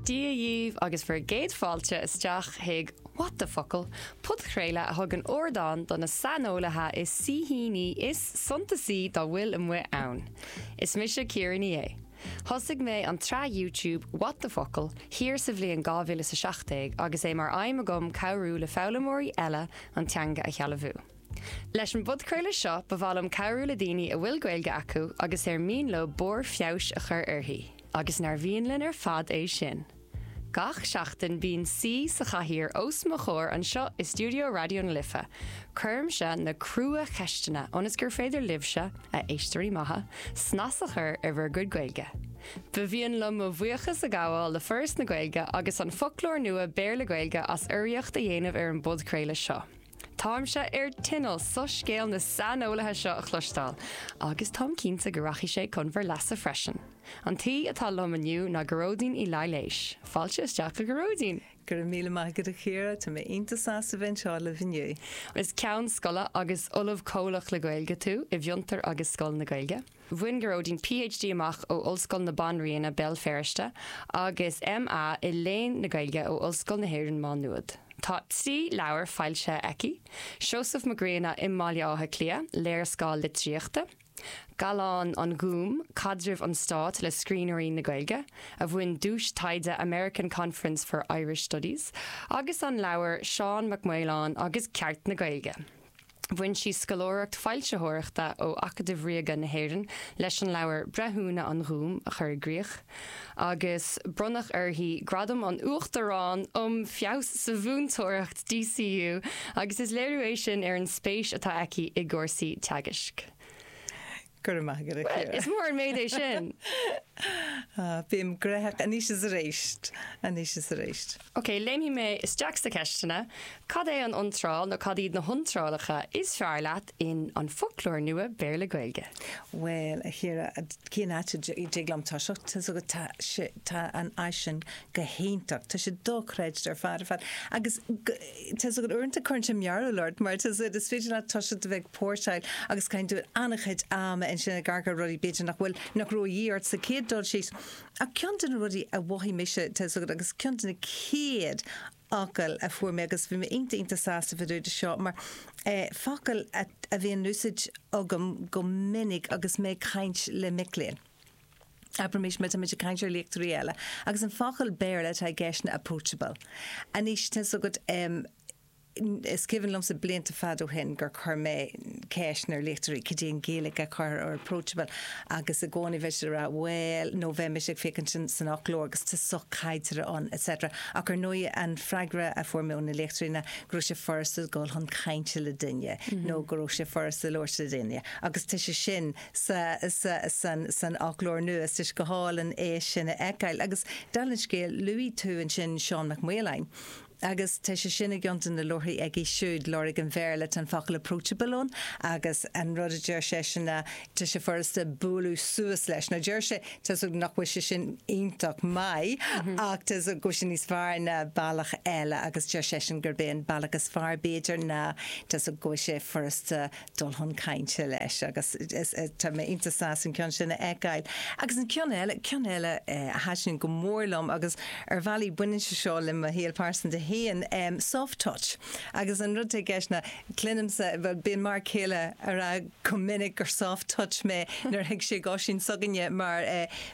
Dia dhíbh agus bhur gcéad fáilte isteach chuig What the Focal! podchraoladh a thugann ardán do na saineolaithe is saoithíní is suntasaí dá bhfuil amuigh ann. Is mise Ciara Ní É. Thosaigh mé an tsraith YouTube What the Focal! thiar sa bhliain 2017 agus é mar aidhm agam cabhrú le foghlaimeoirí eile an teanga a shealbhú. Leis an bpodchraoladh seo, ba mhaith liom cabhrú le daoine a bhfuil Gaeilge acu agus ar mian leo barr feabhais a chur uirthi. Agus nár mhian linn ar fad é sin? Gach seachtain, bíonn saoi sa chathaoir os mo chomhair anseo i stiúideo Raidió na Life. Cuirimse na crua-cheisteanna ionas gur féidir libhse, a éisteoirí maithe, snas a chur ar bhur gcuid Gaeilge. Ba mhian liom mo bhuíochas a ghabháil le Foras na Gaeilge agus an Foclóir Nua Béarla-Gaeilge as urraíocht a dhéanamh ar an bpodchraoladh seo. Táimse ar tinneall soiscéal na saineolaithe seo a chloisteáil, agus táim cinnte go rachaidh sé chun bhur leasa freisin. An t-aoi atá liom inniu ná Gearóidín Uí Laighléis. Fáilte isteach a Ghearóidín! Go raibh míle maith agat a Chiara, tá mé iontach sásta bheith anseo libh inniu. Is Ceann Scoile agus Ollamh Comhlach le Gaeilge tú i bhFiontar agus Scoil na Gaeilge. Bhain Gearóidín PhD amach ó Ollscoil na Banríona, Béal Feirste, agus MA i Léann na Gaeilge ó Ollscoil na hÉireann Má Nuad. Tá trí leabhar foilsithe aici, Seosamh Mac Grianna i mBaile Átha Cliath, léarscáil litríochta, Gallán an Ghúim, caidreamh an stáit le scríbhneoirí na Gaeilge, a bhain duais taighde American Conference for Irish Studies, agus an leabhar Seán Mac Maoláin agus Ceart na Gaeilge. Bhain sí scoláireacht foilsitheoireachta ó Acadamh Ríoga na hÉireann leis an leabhar Breithiúna an Ghúim a chur i gcrích, agus bronnadh uirthi Gradam an Uachtaráin um Feabhas sa Mhúinteoireacht DCU agus is léiriú é sin ar an spéis atá aici i gcúrsaí teagaisc. Go raibh maith agat, a Chiara. Is mór an méid é sin! Ah, bím graitheach anois is arís, anois is arís. Ok, léimfidh mé isteach sna ceisteanna. Cad é an iontráil, nó cad iad na hiontrálacha, is fearr leat in An Foclóir Nua Béarla-Gaeilge? Bhuel, a Chiara, cén áit a dtig liom toiseacht? Tá a fhios agat, tá sé, tá an áis sin go hiontach. Tá sé dochreidte ar fad ar fad. Agus go, Tá a fhios agat uaireanta cuireann sé mearbhall ort mar tá a fhios agat is féidir leat toiseacht a bheith ag póirseáil agus caitheann tú an-chuid ama ansin ag amharc ar rudaí b'fhéidir nach bhfuil nach raibh a dhíth ort sa chéad dul síos ach ceann de na rudaí a mhothaigh mise tá a fhios agat agus ceann de na chéad fhocail a fuair mé agus bhí mé iontach iontach sásta fá dtaobh de seo mar focal a bhíonn in úsáid agam go minic agus mé ag caint le mic léinn. Abraimis muid, tá muid ag caint ar léachtóirí eile, agus an focal Béarla atá i gceist ná approachable. Anois, tá fhios agat, is cuimhin liomsa blianta fada ó shin gur chuir mé ceist ar léachtóirí cad é an Ghaeilge a chur ar approachable, agus i gcónaí bheadh siad ag rá, bhuel, nó bheadh mise ag féachaint san fhoclóir agus tá sochaideartha ann, etc. Ach ar ndóigh, an freagra a fuair mé ó na léachtóirí ná go raibh sé furasta dul chun cainte le duine, nó go raibh sé furasta labhairt le duine. Agus tá sé sin. sa, sa, san, san fhoclóir nua. Is, is go hálainn é sin a fheiceáil. Agus, dála an scéil, luaigh tú ansin Seán Mac Maoláin. Agus tá sé sin i gceann de na leabharthaí aige siúd, Lorg an Bhéarla. Tá an focal approachable ann agus an rud a deir seisean ná tá sé furasta bualadh suas leis. Now deir sé, tá's agam nach bhfuil sé sin iontach maith ach tá's agam go bhfuil sé níos fearr ná bealach eile agus deir seisean gurb é an bealach is fearr b'fhéidir ná tá's agam go bhfuil sé furasta dul chun cainte leis agus tá mé iontach sásta an ceann sin a fheiceáil. Agus an ceann eile, ceann eile a thaitníonn go mór liom agus ar bhealaí baineann sé seo le mo shaol pearsanta féin, soft touch. Agus an rud atá i gceist ná, cluinimse, bhuel bíonn m'fhear céile ag rá go minic gur soft touch mé nuair a thig sé ag Oisín s'againne mar,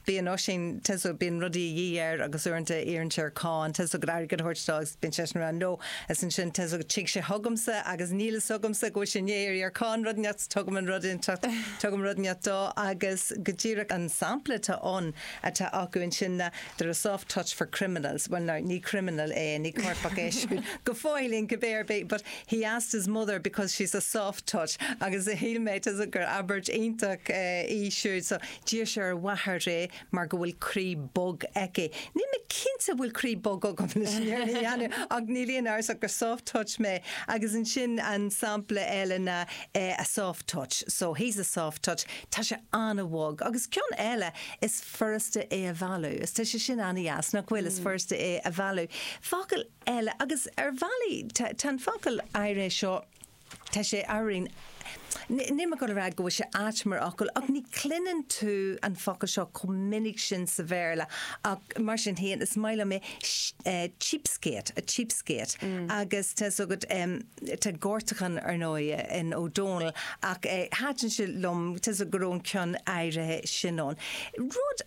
Bíonn Oisín, tá's agat, bíonn rudaí a dhíth air agus uaireanta iarrann sé ar Con, tá's agat, airgead a thabhairt dó agus bíonn seisean ann no is ansin, tá's agat, tig sé chugamsa agus níl fhios agamsa go bhfuil sé i ndiaidh iarraidh ar Con rud inteacht so tugaim an rud inteacht, tugaim rud inteacht dó agus go díreach an sampla atá ann atá acu ansin ná they're a soft touch for criminals bhuel now ní criminal é, ní coirpeach é siúd go fóill cibé ar bith but he asked his mother because she's a soft touch agus shíl mé, tá's agat, gur abairt iontach í siúd so. D'iarr sé ar a mháthair é mar go bhfuil croí bog aici. Níl mé cinnte an bhfuil croí bog agam leis an fhírinne a dhéanamh, ach níl aon amhras ach gur soft touch mé. Agus ansin an sampla eile ná eh a soft touch, so he's a soft touch, tá sé an-bhog. Agus ceann eile, is furasta é a mhealladh, is tá sé sin an-deas, nach bhfuil, is furasta é a mhealladh. Focal eile, agus ar bhealaí tá an focal áirithe seo, Tá sé araon. Níl mé ag dul a rá go bhfuil sé ait mar fhocal, ach ní chluineann tú an focal seo chomh minic sin sa Bhéarla, ach mar sin féin, is maith liom é, cheapskate, a cheapskate. Agus tá fhios agat, tá gortachán, ar ndóighe, in Ó Dónaill, ach thaitin sé liom, tá's agat, go raibh an ceann áirithe sin ann. Rud.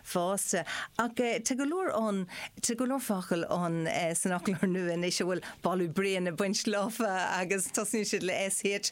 fosta. Ach tá go leor ann, tá go leor focal ann san fhoclóir nua anois a bhfuil boladh bréan ag baint leofa agus tosnaíonn siad le SH,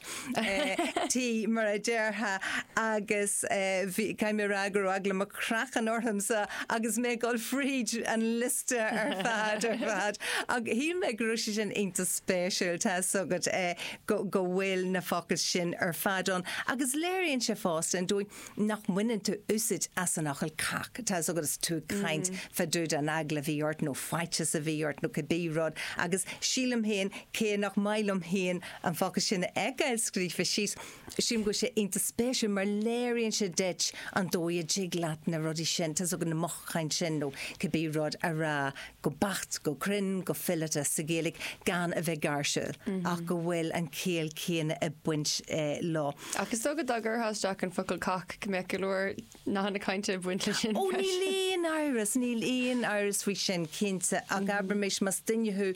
T mar a déarfá agus bhí, caithfidh mé a rá go raibh eagla mo chraicinn ormsa agus mé ag dul fríd an liosta ar fad, ar fad. Ach shíl mé go raibh sé sin iontach spéisiúil, tá 'fhios agat, go bhfuil na focail sin ar fad ann agus léiríonn sé fosta an dóigh, nach mbaineann tú úsaid as an fhocal cac, tá fhios agat is tú ag caint fá dtaobh den eagla a bhí ort nó faitíos a bhí ort nó cad bith rud agus sílim féin cé nach maith liom féin an focal sin a fheiceáil scríofa síos, sílim go bhfuil sé iontach spéisiúil mar léiríonn sé duit an dóigh a dtig leat na rudaí sin, tá fhios agat na mothúcháin sin nó cibé rud a rá go beacht, go cruinn, go fileata sa Ghaeilge gan a bheith gáirsiúil ach go bhfuil an chiall céanna ag baint leo. Ach is dócha dá gcuirtheá isteach an focal cac go mbeadh go leor nathanna cainte ag baint leis sin freisin. Ó níl aon amhras, níl aon amhras faoi sin, cinnte, ach abraimis más duine thú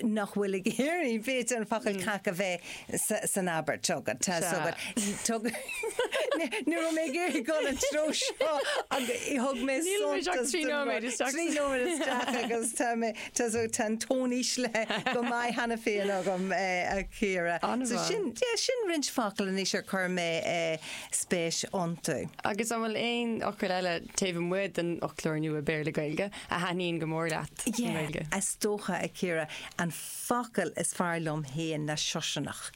nach bhfuil ag iarraidh, b'fhéidir, an focal cac a bheith san abairt agat, tá a fhios agat. Ní raibh mé ag iarraidh dul an treo seo ach thug mé suntas don rud. Níl muid ach trí nóiméad isteach. Trí nóiméad isteach agus tá mé. Tá so tá an tón íslithe go maith cheana féin agam, a Chiara. An bhfuil? So sin, yeah, sin roinnt focal anois ar chuir mé spéis iontu. Agus an bhfuil aon fhocal eile taobh amuigh den fhoclóir nua Béarla-Gaeilge a thaitníonn go mór leat i nGaeilge? Yeah, is dócha, a Chiara, an focal is fearr liom féin ná siosarnach,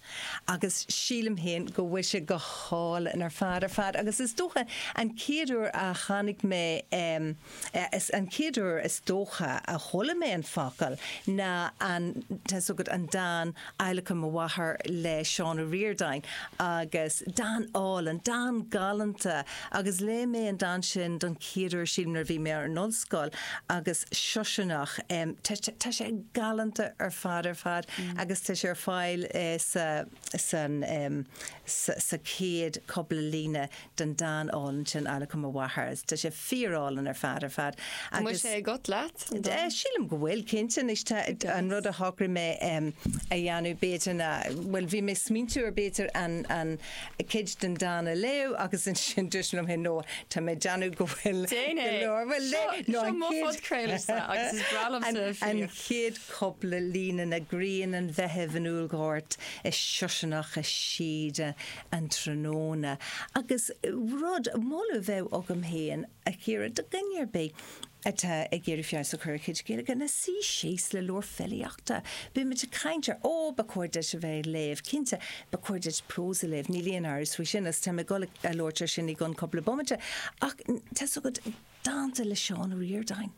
agus sílim féin go bhfuil sé go hálainn ar fad ar fad, agus is dócha an chéad uair a tháinig mé, eh, An chéad uair is dócha a chuala mé an focal ná an, tá 'fhios agat, an dán Adhlacadh mo Mháthar le Seán Ó Ríordáin agus dán álainn, dán galánta agus léigh mé an dán sin don chéad uair sílim nuair a bhí mé ar an ollscoil agus Siosarnach tá sé galánta ar fad ar fad agus tá sé ar fáil sa. san, sa chéad cupla líne den dán álainn sin Adhlacadh mo Mháthar. Tá sé fíor álainn ar fad, ar fad. Agus. An bhfuil sé agat, an dán? Sílim go bhfuil, cinnte. Anois tá, an rud a shocraigh mé a dhéanamh b'fhéidir ná, bhuel bhí mé smaointiú ar b'fhéidir an, an cuid den dán a léamh agus ansin dúirt mé liom féin no, tá mé ag déanamh go bhfuil. Déan é. Go leor, bhuel léigh, no an chéad. Seo, seo mo phodchraoladh-sa agus is breá liomsa filíocht. An chéad cupla líne ná grian an Mheithimh in Úllghort is Siosarnach i Síoda an tráthnóna agus rud, moladh a bheadh agam féin a Chiara do dhuine ar bith atá ag iarraidh feabhas a chur ar a chuid Gaeilge ná suí síos le leabhar filíochta. Bíonn muid ag caint ar, ó, ba chóir duit a bheith ag léamh, cinnte, ba chóir duit prós a léamh, níl aon amhras faoi sin agus táim ag dul a labhairt ar sin i gcionn cupla bomaite ach tá's agat, Dánta le Seán Ó Ríordáin.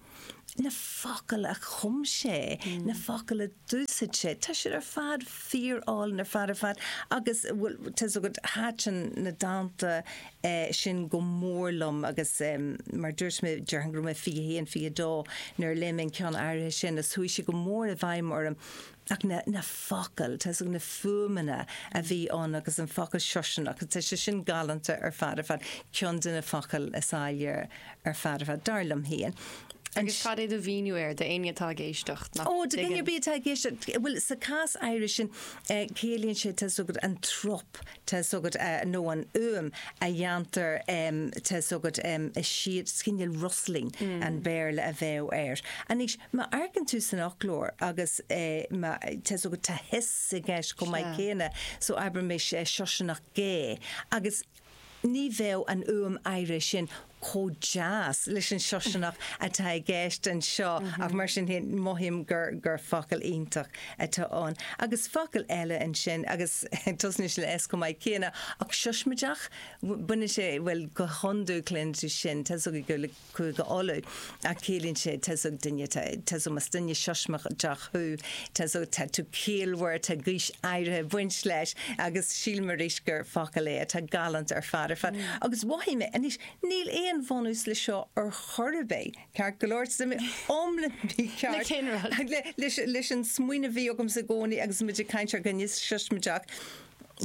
Na focail a chum sé, na focail a d'úsaid sé, tá siad ar fad fíor álainn ar fad ar fad agus bhuel, tá's agat, thaiteann na dánta sin go mór liom agus mar a dúirt mé, déarfainn go raibh mé 21, 22 nuair a léigh mé an ceann áirithe sin agus chuaigh sé go mór i bhfeidhm orm. ach na focail, tá 's agat na fuaimeanna a bhí ann agus an focal siosarnach, tá sé sin galánta ar fad ar fad, ceann de na focail is áille ar fad ar fad, dar liom féin. Agus cad é do mhíniú air, do éinne atá ag éisteacht nach dtuigeann? Ó, do dhuine ar bith atá ag éisteacht, bhuel, sa chás áirithe sin, ciallaíonn sé, tá 's agat, an trup, Tá 's agat nó an fhuaim a dhéantar tá 's agat sea is cineál rustling an Bhéarla a bheadh air. Anois, má amharcann tú san fhoclóir agus má tá 's agat tá hiss i gceist chomh maith céanna so abraimis siosarnach gé agus ní bheadh an fhuaim áirithe sin. chomh deas leis an siosarnach atá i gceist anseo ach mar sin féin mothaím gur gur focal iontach atá ann. Agus focal eile ansin agus tosnaíonn sé le S chomh maith céanna ach siosmaideach, baineann sé, bhuel go hiondúil cluineann tú sin, tá 's agat gur le Cúige Uladh. eh ciallaíonn sé tá 's agat duine, tá 's agat más duine siosmaideach thú, tá 's agat tá tú ciallmhar, tá gaois áirithe ag baint leis agus sílim arís gur focal é atá galánta ar fad ar fad. Agus mhothaigh mé, anois níl aon bhunús leis seo ar chor ar bith, ceart go leor, tá mé iomlán mícheart leis an smaoineamh a bhí agamsa i gcónaí agus muid ag caint ar dhuine siosmaideach,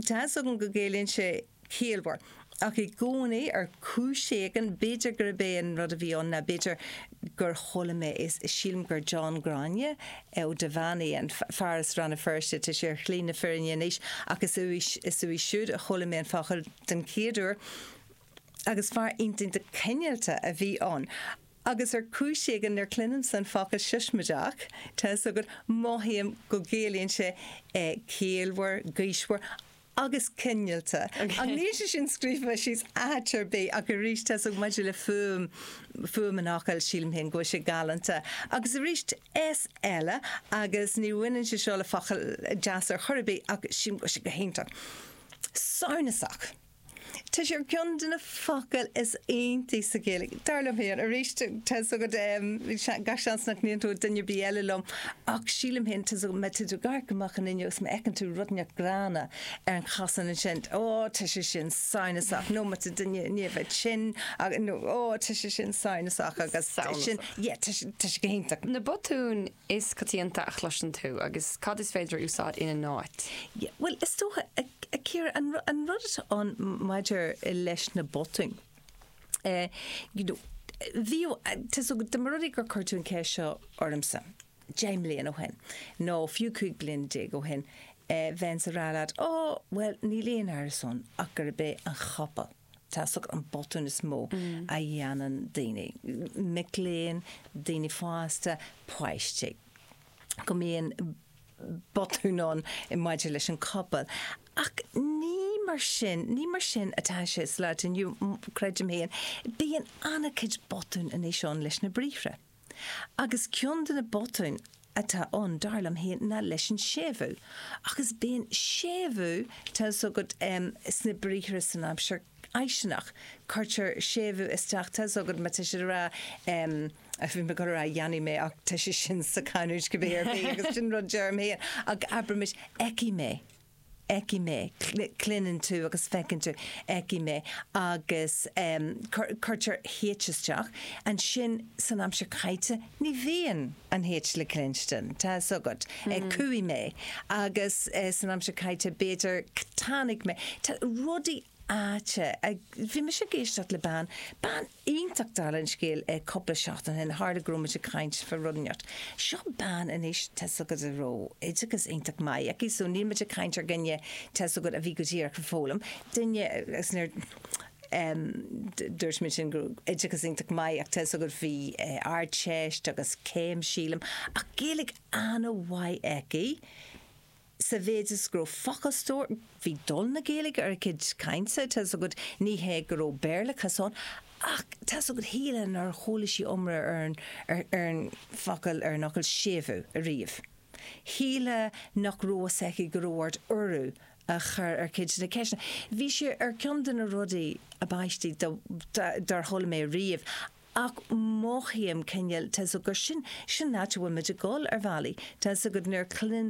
tá 's agam go gciallaíonn sé. ciallmhar. Ach i gcónaí, ar chúis éigin, b'fhéidir gurb é an rud a bhí ann ná, b'fhéidir gur chuala mé é, sílim gur John Ghráinne Ó Duibheannaigh, an fear as Rann na Feirste, tá sé ar shlí na fírinne anois, ach is uaidh, is uaidh siúd a chuala mé an focal den chéad uair, agus fear iontach cineálta a bhí ann. Agus ar chúis éigin, nuair a chluinimse an focal siosmaideach, tá 'fhios agat, mothaím go gciallaíonn sé ciallmhar, gaoismhear, agus cineálta. Ach níl sé sin scríofa síos áit ar bith, ach arís, tá 's agat, maidir le fuaim, fuaim an fhocail, sílim féin go bhfuil sé galánta. Agus arís, S eile, agus ní bhaineann sé seo le focail deasa ar chor ar bith, ach sílim go bhfuil sé go hiontach. Samhnasach. Tá sé ar cheann de na focail is iontaí sa Ghaeilge, dar liom féin. Arís, tá's agat, gach seans nach n-aontóidh duine ar bith eile liom, ach sílim féin, tá's agat, má tá tú ag amharc amach an fhuinneog agus má fheiceann tú rud inteacht gránna ar an chosán ansin, ó, tá sé sin samhnasach, nó má tá duine i ndiaidh bheith tinn, nó, ó, tá sé sin samhnasach, agus tá sin, yeah, tá sé go hiontach. Na botúin is coitianta a chloiseann tú agus cad is féidir a úsáid ina n-áit? Yeah, bhuel, is dócha, a Chiara, an rud atá ann maidir leis na botúin, eh, you know, bhíodh, tá 's agat, dá mba rud é gur chuir tú an cheist seo ormsa deich mbliana ó shin, nó fiú cúig bliana déag ó shin, eh, bheinnse ag rá leat, oh, bhuel, níl aon amhras ann ach gurb é an chopail. tá's agat an botún is mó a dhéanann daoine, mic léinn, daoine fásta, páistí, go mbíonn botún ann maidir leis an copail. Ach ní mar sin, ní mar sin atá sé sa lá atá inniu, creidim féin. Bíonn an-chuid botún anois ann leis na briathra. Agus ceann de na botúin atá ann, dar liom féin, ná leis an séimhiú. Agus bíonn séimhiú, tá fhios agat, em, sna briathra san aimsir fháistineach, cuirtear séimhiú isteach, tá fhios agat, má tá siad ag rá, em, bhí mé ag dul a rá dhéanfaidh mé ach tá sé sin sa chanúint cibé ar bith agus sin rud deirim féin, ach abraimis fheicfidh mé. fheicfidh mé, cluineann tú agus feiceann tú, fheicfidh mé agus cuirtear H isteach, ansin san aimsir chaite ní bhíonn an H le cluinstin, tá 'fhios agat. Chuaigh mé agus san aimsir chaite b'fhéidir tháinig mé, tá rudaí aisteach, bhí mise ag éisteacht le bean, bean iontach ar lean scéal í cúpla seachtain ó shin, tharla go raibh muid ag caint faoi rud inteacht. Seo bean anois tá's agat a raibh oideachas iontach maith aici, so níl muid ag caint ar dhuine tá's agat a bhí go díreach ag foghlaim, duine, agus nuair dúirt muid sin go raibh oideachas iontach maith aici tá's agat bhí ardteist agus céim, sílim, ach Gaeilge ana-mhaith aici. sa mhéid is go raibh focalstór, bhí dul na Gaeilge ar a cuid cainte, tá's agat, ní hé go raibh Béarlachas ann, ach tá's agat, shílfeá nár chuala sí iomrá ar an, ar an focal, ar an fhocal séimhiú ariamh. Shílfeá nach raibh fhios aici go raibh ort urú a chur ar cuid de na ceisteanna. Bhí sé ar ceann de na rudaí ab aistí dá, dá, dár chuala mé ariamh, ach mothaím cineál, tá's agat, sin, sin an áit a bhfuil muid ag dul, ar bhealaí, tá's agat, nuair a chluin